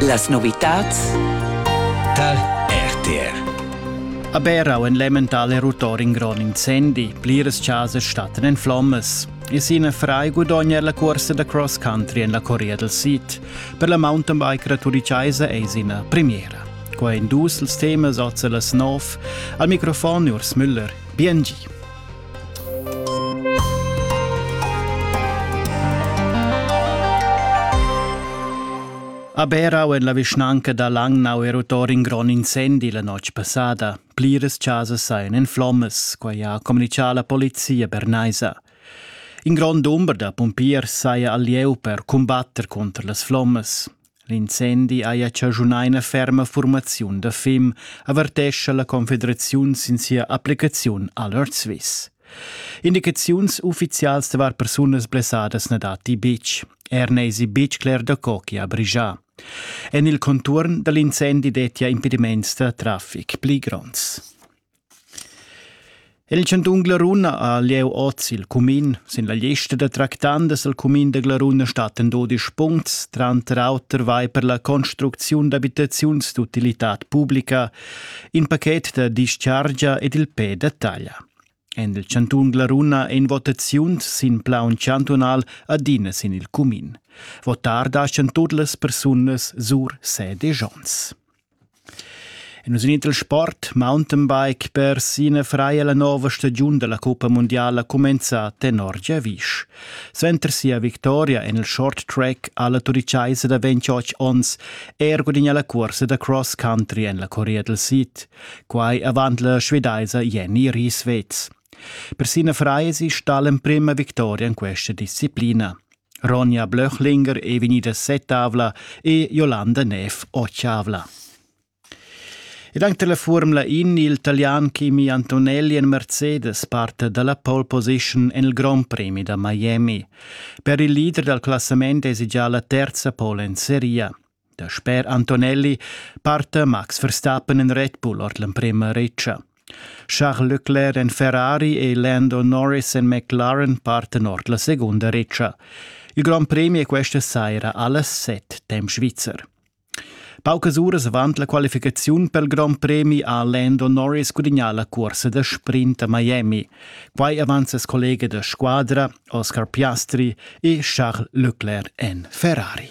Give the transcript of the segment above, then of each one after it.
Las novitads tar RTR. A Berau en l'emmental erutor in grond incendi, pliras chasas stattan en flommas. E sina frai gudogna la corsa da cross country en la Corea del Sid. Per la mountain bike raturicaisa è sina premiera. Qua in dus els temas oz las nov. Al microfon Urs Müller, BNG. A Berau en la vischnanca da Langnau è rottor in grond incendi la notg passada. Pliras chasas sajan en flommas, quai ha communichà la polizia bernaisa. In grond dumber da pumpiers saja al lieu per cumbatter contra las flommas. L'incendi haja chaschunà ina ferma furmaziun da fim, avertescha la Confederaziun sin sia applicaziun a l'Earth Swiss. Indicaziuns uffizials davar persunas blessadas na datti betg. Er n'èsi betg cler da co che ha brigià. En il conturn da l'incendi dettia impediments da traffic pli gronds. El chantun Glaruna ha lieu oz il cumin. Sin la lista da tractandas al cumin da Glaruna stattan dudisch puncts, tranter auter vai per la construcziun d'abitaziuns d'utilitad publica, in paket da dischargia ed il pe da taglia. En il chantun Glaruna en votaziun sin plaun chantunal adina sin il cumin. Votar da chantun las persunas sur sede Jons. E nus in il sport mountainbike per ina freia la nova stagiun della Coppa Mundiala cumenza tenor Giavisch. Suenter sia victoria en il short track alla turichaisa da 28 onns er gudigna la cursa da cross country en la Corea del Sid. Quai avant la svedaisa Jenny Rieswetz. Per Sina Freie si sta l'emprima victoria in questa disciplina. Ronja Blöchlinger ei vegnida setavla e Jolanda Neff otschavla. Ed anche la Formula In, il talian Kimi Antonelli en Mercedes parte dalla pole position en il Grand Prix da Miami. Per il leader dal classament esigia la terza pole en seria. Dasper Antonelli parta Max Verstappen en Red Bull ord l'emprema retscha. Charles Leclerc en Ferrari e Lando Norris en McLaren partan ord la segunda retscha. Il Grand Premi è questa saira alles set temp svizzer. Paucas uras avant la qualificaziun per il Grand Premi ha Lando Norris gudagnà la cursa da sprint a Miami. Quai avant ses collega da squadra, Oscar Piastri, e Charles Leclerc en Ferrari.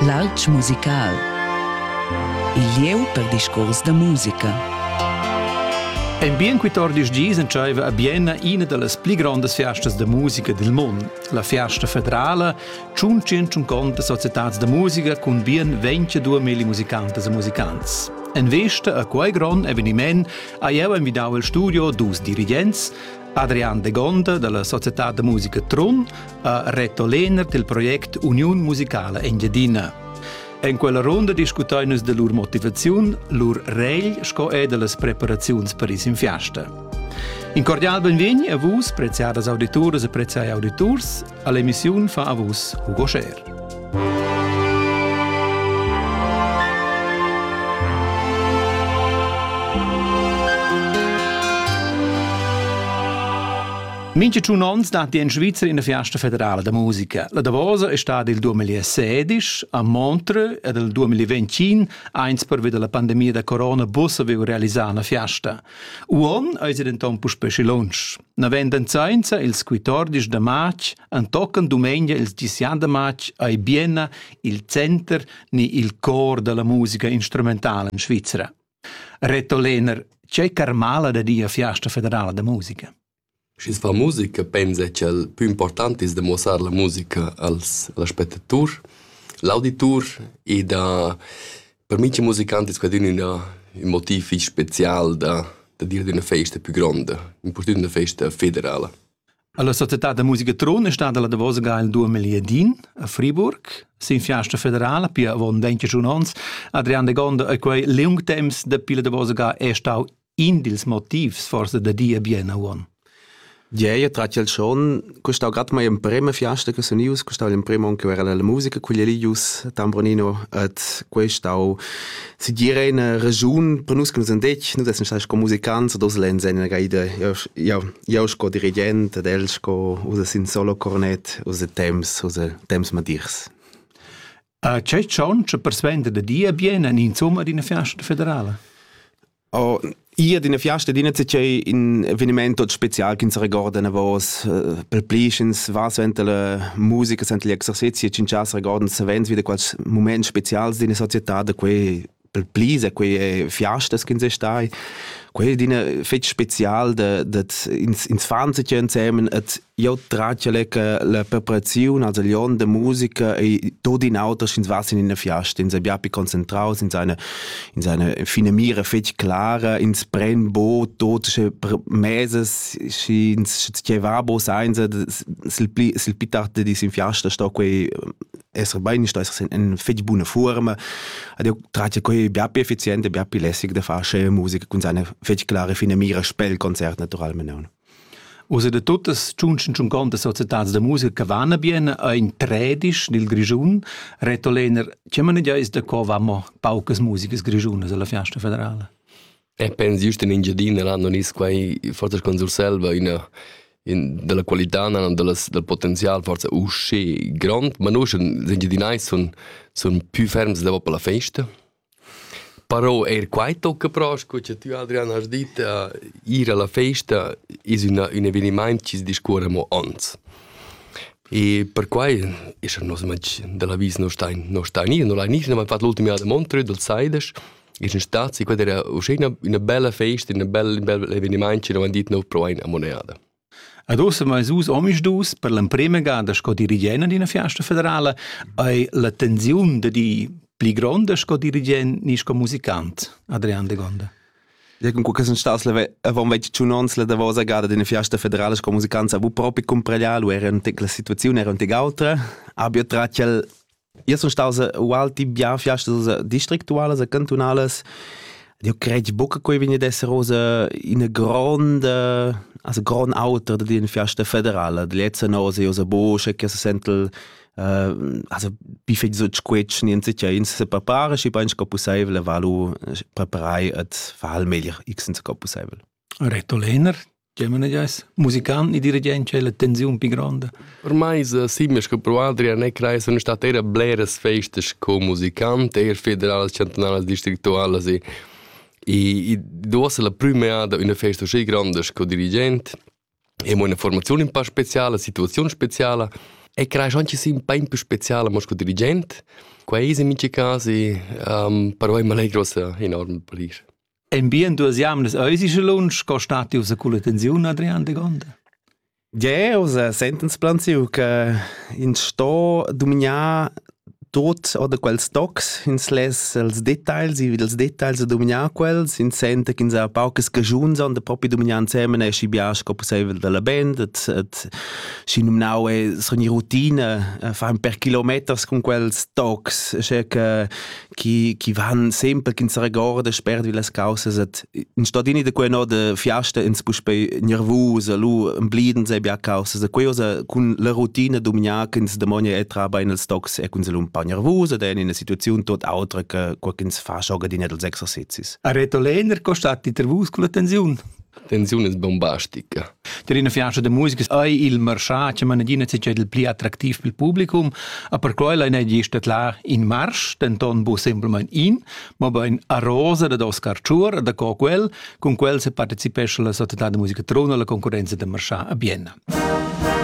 L'alp musical. Il lieu per discurs da musica. En bien 14 gis entscheiva a Bienna ina dallas pli grondas fiastas da musica dil mund, la Fiasta federala, tschun conta societads da musica cun bien 22 mili musicantas e musicants. En vesta a quei grond eveniment ha jeu invidau il studio dus dirigents, Adrian de Gonda dalla società da musica Trun ha Reto Lehner del project Uniun musicala Engiadina. En quella ronda discutain nus de lur motivaziun, lur regl sco e de las preparaziuns per is in fiasta. In cordial benvegni a vus, preziadas auditoras e preziai auditors, all'emissione fa a vus Hugo Scher. Mincha tschun ons datti in Svizra in fiasta federala da musica. La Davosa è stata il 2016 a Montreux ed il 2021, eins pervi della pandemia da corona bus avevo realizzato una fiasta. Uon è denton puspè schi lunsch. Navenden sainza ils 14 da march antocan dumengia ils 10 da march a Bienna il center ni il cor della musica instrumentale in Svizzera. Reto Lehner, c'è Carmala da dia fiasta federala da musica? Schi's fa musica pensa cha'l pü important es da muossar la musica als als spettaturs, l'auditur e da per mincha musicant es quadün ün ün motiv fich spezial da da dir d'üna festa pü gronda, impurtünt üna festa federala. A la società da musica Trun è stada la davosa ga il duamiliadin a Friburg. Sin fiasta federala, pia avon 21 onns, Adrian de Gonda e quei liung temps dapi la davosa ga è stau In dils motivs forsa da dir bien uon. Gieia tratg el schon, custau gat mai emprema fiasta che sunius, custau l'emprema onn che era la musica quilius Tambronino et questau si dire eine Region per nus che nus andec, nus essem stati sco musicants o dos lenz en la gaida. Io io sco dirigent ed el sco usa sin solo cornet, usa temps, usa temps madirs. A c'è cion che persvenda da dir bien en insomma d'ina fiasta federala? Oh, io d'ina fiasta d'ina c'è in evenimento special che ins ricorda una voce per plischens va suenter la musica suenter gli exercizi e in casa ricordan savens wieder quals momenti specials d'ina società da quei per plisa quei fiastas che ins è stai quei d'ina fetg special da ins ins fan sich insammen et Io tragia che la preparaziun als lion de musica e tot in auter sch'ins was in eine fiasta, ins è bia più concentraus in seine in seine fine mira fetg clara, ins pren bo tot sche meses sch'ins tgei va bo seinza sil pli sil pli tard dis in fiasta sto quei esser bein, sto esser in fetg buna forma. Ed io tragia quei bia più effizient e bia più lässig da far sche musica cun seine fetg clara fine mira spel concert naturalmente. Uss e da tuttas tschunschen tschuncontas societads da musica che van bien è in tredisch dil Grischun. Reto Lehner, tge manegia is da co vamo paucas musicas grischunas alla Fiasta federala? E eh, penso giusto in Engiadina l'hanno nis quai forza con Surselva una in, della qualità non delles, del potenzial forza uscì grond ma noi sind Engiadinais son son più ferms da per la festa Però eir quai tocca però, sco cha tü Adrian hast dit, a ir a la festa es üna ün evenimaint chi's discuorra amo ans. E perquai es er nos matg da l'avis no sta in no sta gnir, no l'ha gnir, n'ha fat l'ultima jada a Montreux dal Saidas, es ün spazi, quella era uschè üna üna bella festa, üna bella ün bel evenimaint chi n'havan dit nouv però aint amo neada. Ad ossa meis us omisdus per l'emprema gada sco dirigent d'üna fiasta federala hai la tensiun da dir pli gronda sco dirigent ni sco musicant, Adrian Degonda. Ja con que sun stas avant 21 ons la davosa gada d'üna fiasta federala sco musicant, avevo propi cumpraglià, lu era la situaziun era aunc autra, abia trat el Io sun staus ualti bien fiastas districtualas e cantunalas. Eu cred buca che vegni ad esser oz ina gronda, also grond auter da dir in fiasta federala. Da lezza nos è oz buca che se sentel also bi fetg sut squetsch niente che ins se prepara schi bein sco possibel valu preparai et fa il meglier x senza sco possibel. Reto Lehner, Tgei manegiais? Musican e dirigent c'è la tensiun più grande? Per mai simmes che Pro Adrian e Crai sono state eher bleres festes co musicant, eher federalas, chantonalas, districtualas e e duossa la prümeada üna festa uscì grandes co dirigent e mo una formazione un po' speciale, situazione speciale e crai anche sì un po' più speciale mo co dirigent. Quei è in miei caso um, per voi mi allegra enorme per Paris. En bien duas jamnas eisi sche lunsch co stati ussa culla tensiun Adrian de Gonda? Ja, usa sentens plan siu che in sto dominar tot oder quels tocs ins les els details i els details da dominar quels in sente ch'ins ha paucas cagiuns on da propi dominar insemen e schi bia sco possibel dalla band et et schi nominau e sogni routine fa per kilometers con quels tocs che che chi, chi van sempre ch'ins regorda spert vi las causas et in stadini da quei no de fiasta ins puspei nervus lu embliden sei bia causas da quei cun la routine dumignar ch'ins demonia e tra bein els tocs e ch'ins un pa nervus ed en ina situaziun tot autra che quo ch'ins fa schoga di net els exercizis. A Reto Lehner costat intervus con attenziun. tensiun es bombastica. Tar ina fianza da musica ei il marschà che mana adina c'è il pli attractiv pel publicum, a per quella in egi stat là in marsch, denton bu semplamain in, ma bein a rosa da Oscar Ciur, da co quel, cun quel se partecipesce la società de musica Trona alla concorrenza de marschà a Bienna.